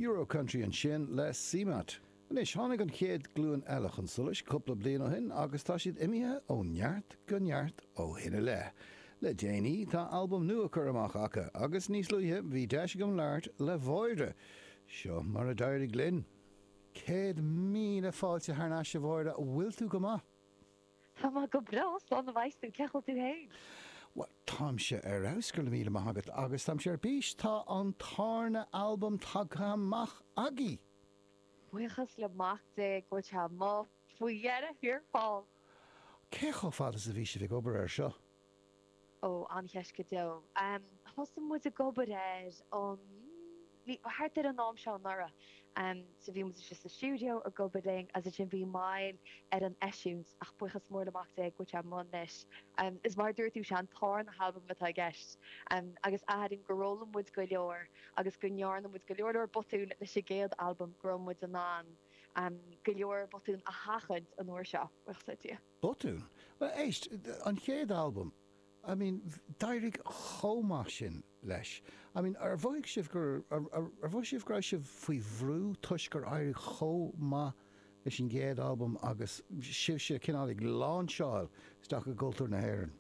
Euro-Country ansin le CMAT. Anois, tháinig an chéad ghlúin eile chun solais cúpla bliain ó shin agus tá siad imithe ó neart go neart ó shin i leith. Le déanaí, tá albam nua curtha amach acu agus níos luaithe, bhí deis agam labhairt le Mháire. Seo mar a d'éirigh linn. Céad míle fáilte thar n-ais a Mháire, bhfuil tú go maith? Tá mé go breá, slán a bheas tú, cén chaoi a bhfuil tú fhéin? Bhuel, táimse ar fheabhas, go raibh míle maith agat, agus táimse ar bís, tá an tárna albam tagtha amach agaibh! Buíochas le Mac Dé go bhfuil sé amuigh faoi dheireadh thiar thall! Cé chomh fada is a bhí sibh ag obair air seo? Ó, an-cheist go deo. Thosaigh muid ag obair air um thart ar an am seo anuraidh. So bhí muid istigh sa stiúideo ag obair linn agus ansin bhí moill ar an eisiúint ach buíochas mór le Mac Dé, go bhfuil sé amuigh anois, is mar a dúirt tú, 'sé an tarna halbam atá i gceist agus airím gur fhoghlaim muid go leor agus go ndearna muid go leor leor botún leis an gcéad albam go raibh muid in ann go leor botún a sheachaint an uair seo, buíochas le Dia. Botún? Bhuel, éist, an chéad albam, I mean, d'éirigh chomh maith sin leis. I mean, ar mhothaigh sibh gur, ar mhothaigh sibh go raibh sibh faoi bhrú toisc gur éirigh chomh maith leis an gcéad albam agus sibhse cineál ag láinseáil isteach i gcultúr na hÉireann?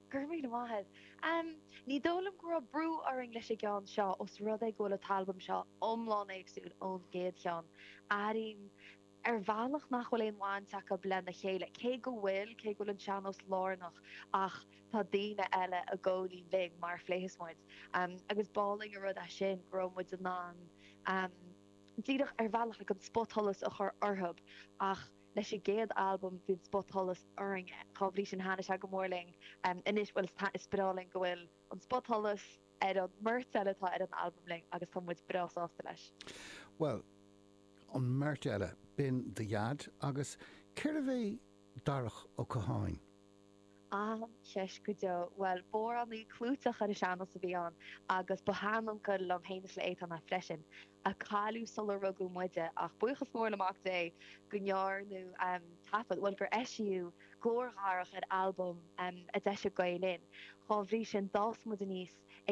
Go raibh míle maith agat. Em, ní dóigh liom go raibh brú orainn leis an gceann seo os rud é go bhfuil an t-albam seo iomlán éagsúil ón gcéad cheann. Airím. ar bhealach nach bhfuil aon bhaint acu lena chéile, cé go bhfuil, cé go bhfuil an sean-nós lárnach ach tá daoine eile i gcónaí linn mar a phléifeas muid agus b'álainn an rud é sin go raibh muid in ann díreach ar bhealach like an spotsholas a chur orthu ach leis an gcéad albam bhí an spotsholas orainne, dá bhrí sin thaitnigh sé go mór linn anois bhuel is taitnigh, is breá linn go bhfuil an spotsholas ar an mbeirt eile atá ar an albam linn agus tá muid breá sásta leis. Bhuel, an mbeirt eile, b'in do Dhaid agus cérbh é Darach Ó Catháin? An-cheist go deo. Bhuel, b'amhránaí clúiteach ar an sean-nós a bhí ann agus ba shean-uncail liom féin is le Étáin é freisin, a cailleadh sular rugadh muide ach buíochas mór le Mac Dé go ndearnadh taifead, bhuel gur eisíodh glór Dharach ar albam a d'eisigh Gael Linn. Dá bhrí sin, d'fhás muid aníos ag.